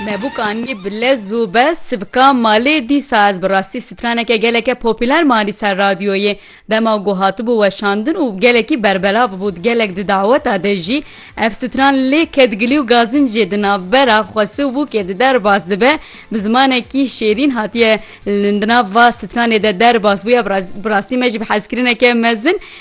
Me bûk anî bi lez û bez sivka malê dîsa ez bi rastî straneke geleke popîler me anî ser radyoyê dema ku hatibû weşandin û gelekî berbelav bû di gelek di daweta de jî ev stran lê kedgilî û gazincê di navbera xwesi û bûkê de derbas dibe bi zimanekî şêrîn hatiye di nav va stranê de derbas bûye bi rastî me jî bi hezkirineke mezin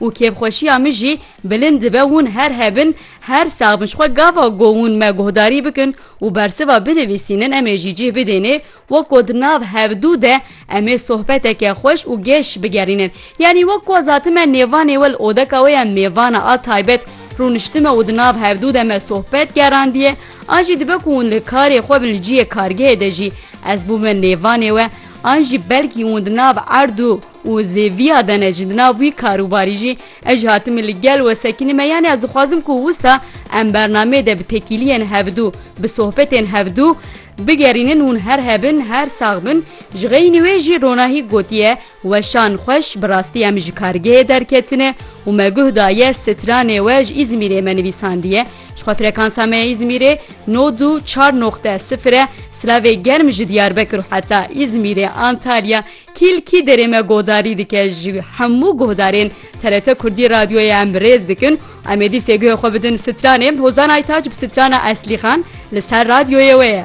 Û kêfxweşiya min jî bilind dibe hûn her hebin, her sax bin ji xwe gava ku hûn me guhdarî bikin û bersiva binivîsînin em ê jî cih bidênê weko di nav hevdû de em ê sohbeteke xweş û geş bigerînin. Yanî wek ku ez hatime nêvanê we li odeka wê ya mêvana a taybet rûniştime û di nav hevdû de me sohbet gerandiye an jî dibe ku hûn li karê xwe bin li cihê kargehê de jî ez bûme nêvanê we an jî belkî hûn di nav erd û Û zê viya de ne jî di nav wî karûbarî jî ez jî hatime li gel we sekînî me yanî ez dixwazim ku wisa em bernameyê de bi tekîliyên hevdû bi sohbetên hevdû bigerînin hûn her hebin her sax bin ji xeynî wê jî ronahî gotiye weşan xweş bi rastî em ji kargehê derketine û me guh daye sitranê we ji îzmîrê me nivîsandiye ji xwe frekansa me ya îzmîrê no du çar noqte sifir e silavê germ ji diyarbekir û heta îzmîrê antalya Kîl kî derê me godarî dike ji hemû guhdarên TRT Kurdî Radyoyê em rêz dikin û em ê dîsê guhê xwe bidin stranê Hozan Aytaç bi strana Eslîxan li ser radyoyê wê ye.